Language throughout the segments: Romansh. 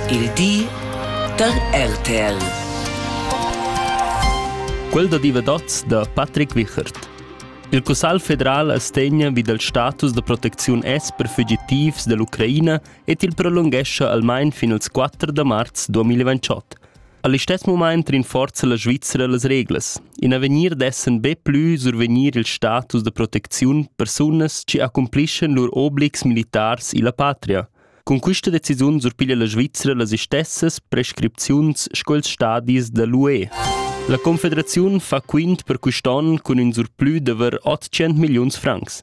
Il di da RTL. Quel da divadats da Patrick Wichert. Il Cussal federal astegna vi dal status da protecziun S per fugitivs dell'Ucraina et il prolunghescha almain fin als 4 da marz 2028. All'istess moment rinforza la Svizzera las reglas. In avegnir dessen be plü survegnir il status da protecziun persunas ci accumplissen lur obligs militars illa patria. Cun quista decisiun surpiglia la Svizra las istessas prescripziuns sco ils stadis da l'UE. La Confederaziun fa quint per quist'on cun ün surplü d'avair 800 milliuns francs.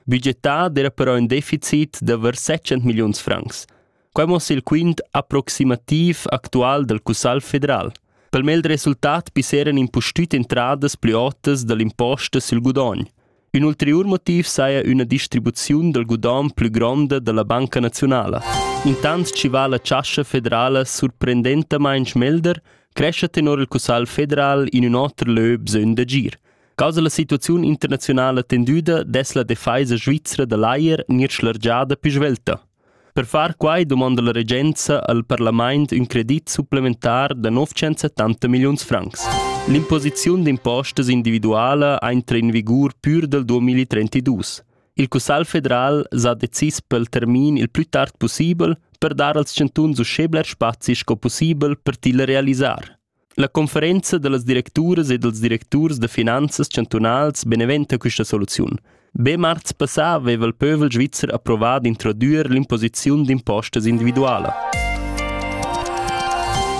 Budgetà d'era però ün deficit d'avair 700 milliuns francs. Quai mossa il quint approximativ actual dal Cussagl federal. Pel mel resultat pisseran impustüt entradas plü otas da l'imposta sül gudogn. Ün ulteriur motiv saja üna distribuziun dal gudogn plü gronda da la Banca naziunala. Intant chi va la Chascha federala surprendentamaing schmelder, crescha tenor il Cussagl federal in ün oter lö bsögn d'agir. Causa la situaziun internazionala tendüda dess la defaisa svizra da l'ajer gnir schlargiada più svelta. Per far quai dumonda la regenza al parlament ün credit supplementar da 970 milliuns francs. L'imposiziun d'impostas individuala entra in vigur pür dal 2032. Il Cussagl federal s'ha decis pel termin il plü tard pussibel per dar als chantuns uschè bler spazi sco pussibel per til realisar. La conferenza dallas directuras e dals directurs da finanzas chantunals beneventa questa soluziun. Be marz passà aveva il pövel svizzer approvà d'introdüer l'imposiziun d'impostas individuala.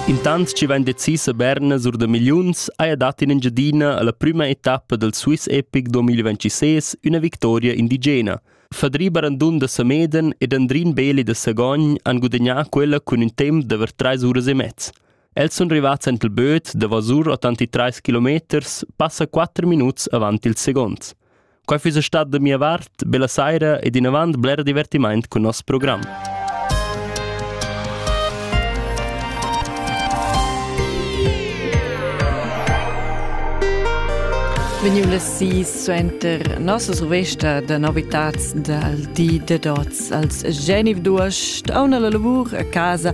Intant chi vain decis a Berna sur da milliuns haja dat in Engiadina alla prüma etappa dal Swiss Epic 2026 üna victoria indigena. Fadri Barandun da Sameden ed Andrin Beli da Sagogn han gudagnà quella cun ün temp d'avair trais uras e mezz. Els sun rivats ant il böt davosur otanti trais kilometers, passa quatter minuts avant il second. Quai füssa stat da mia vart, bella saira ed inavant bler divertimaint cun nos program. Vegniu las sis suenter nossas revista da novitats dal di de dots als Geniv d'Uost, auna la lavur a casa